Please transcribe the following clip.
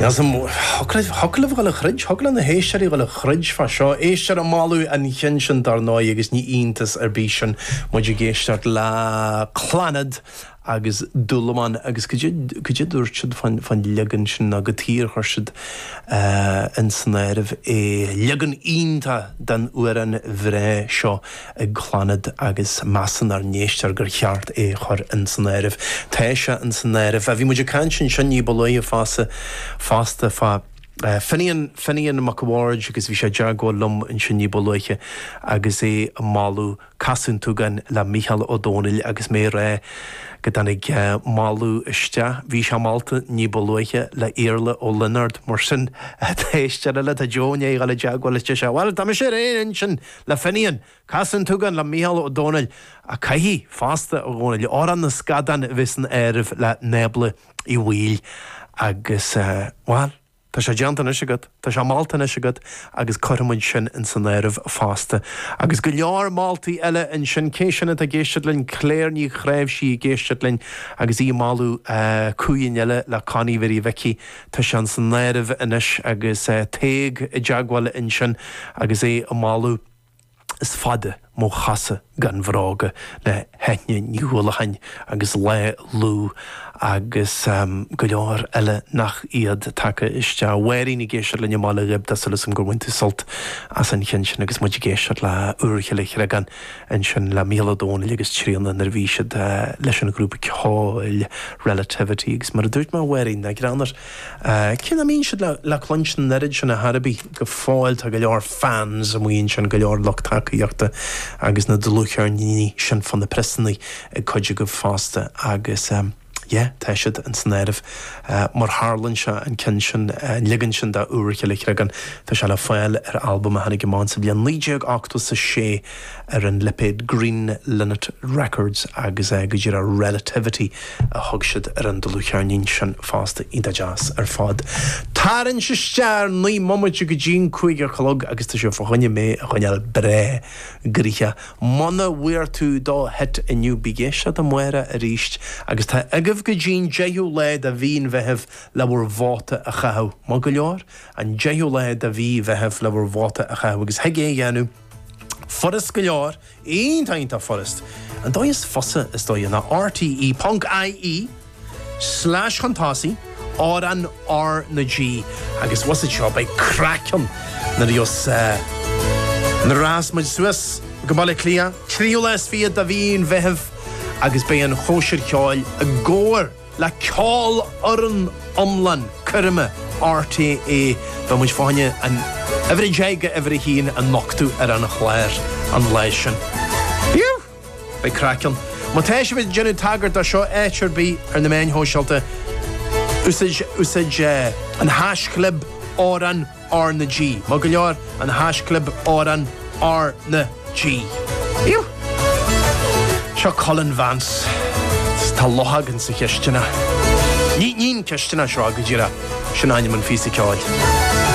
Níos mó. Thig. Thig libh dhul a throid. Thig le na héisteoirí dhul a throid fá seo. Éisteoir ag moladh an chinn sin dár ndóigh agus ní iontas ar bith sin muid ag éisteacht le Clannad agus Dúlamán agus cad é, cad é a dúirt siad fán, fán leagan sin ná go díreach chuir siad ins an áireamh é. Leagan iontach den amhrán bhreá seo ag Clannad agus measann ár n-éisteoir gur cheart é chur ins an áireamh. Tá sé ins an áireamh. Bhí muid ag caint ansin ní ba luaithe fosta fá Finian, Finian Mac a' Bhaird agus bhí sé i dteagmháil liom ansin ní ba luaithe agus é ag moladh Casadh an tSúgáin le Mícheál Ó Domhnaill agus mé a rá go dtáinig moladh isteach, bhí sé molta ní ba luaithe, le Iarla Ó Lionáird mar sin tá éisteoir eile, tá Joe i ndéidh dhul i dteagmháil linn anois. Bhuel, tá mise ar aon intinn! Le Finian, Casadh an tSúgáin le Mícheál Ó Domhnaill, ach caithfidh fosta a Dhónaill, Amhrán na Scadán a bheith san áireamh le Nábla Uí Bhaoill agus, bhuel, tá sé déanta anois agat, tá sé molta anois agat agus cuirfimid sin in san áireamh fosta. Agus go leor moltaí eile ansin. Cé sin atá ag éisteacht linn? Claire Ní Chnáimhsí ag éisteacht linn agus í ag moladh cinn eile le Connie Mhary Mhicí. Tá sé ins an áireamh anois agus Tadhg i dteagmháil ansin agus é ag moladh. Is fada mo chosa gan bhróga le hEithne Ní Uallacháin agus Lá Lugh agus go leor eile nach iad tagtha isteach. Máirín ag éisteacht linn i mBaile Ghib, tá súil asam gur bhain tú sult as an cheann sin agus muid ag éisteacht le hÚirchill an Chreagáin. ansin le Mícheál Ó Domhnaill agus Tríona nuair a bhí siad leis an ghrúpa ceoil Relativity agus mar a dúirt mé a Mháirín, ná gráin ort, cé nach mbíonn siad le cluinstin an oiread sin ar chor ar bith go fóill tá go leor fans amuigh ansin, go leor lucht tacaíochta agus na dlúthcheirníní sin fá na priosanna ag cuid agaibh fosta agus. Yeah, tá siad ins an áireamh. Mar tharlann sé an ceann sin, an leagan sin de Úirchill an Chreagáin. Tá sé le fáil ar albam a tháinig amach ins an bhliain 1986 ar an lipéad Green Linnet Records agus é go díreach Relativity a thug siad ar an dlúthcheirnín sin fosta iontach deas ar fad. Tarraingt isteach ar naoi mbomaite go dtí an cúig a chlog agus tá sé fá choinne mé a choinneáil breá gnoitheach. Muna bhfuair tú do hit inniu beidh deis eile amárach aríst agus tá agaibh go dtí'n deichiú lá de mhí an Mheithimh le bhur vóta a chaitheamh. Maith go leor, an deichiú lá de mhí Mheithimh le bhur vóta a chaitheamh agus thig é a dhéanamh furast go leor, iontach iontach furast. An dóigh is fusa is dóigh ná rte. Ponc IE. Slais chun tosaigh, Amhrán R na G agus bhfuil a fhios agat seo beidh craic ann nuair a bheas nuair a rachas muid suas go Baile Átha Cliath tríú lá is fichead de mhí an Mheithimh agus beidh an chóisir cheoil i gcomhar le ceolfhoireann iomlán coirme RTÉ beidh muid fáinne an uimhir a deich go uimhir a haon a nochtadh ar an chlár an lá sin. Beidh craic ann. Má tá sibh ag déanamh tagairt do seo áit ar bith ar na meáin shóisialta, úsáid an haischlib Amhrán R na G. Maith go leor, an haischlib Amhrán R na G. Seo Colin Vance is tá luch againn sa chistineach. Ní an cistineach seo, go díreach, sin ainm an phíosa ceoil.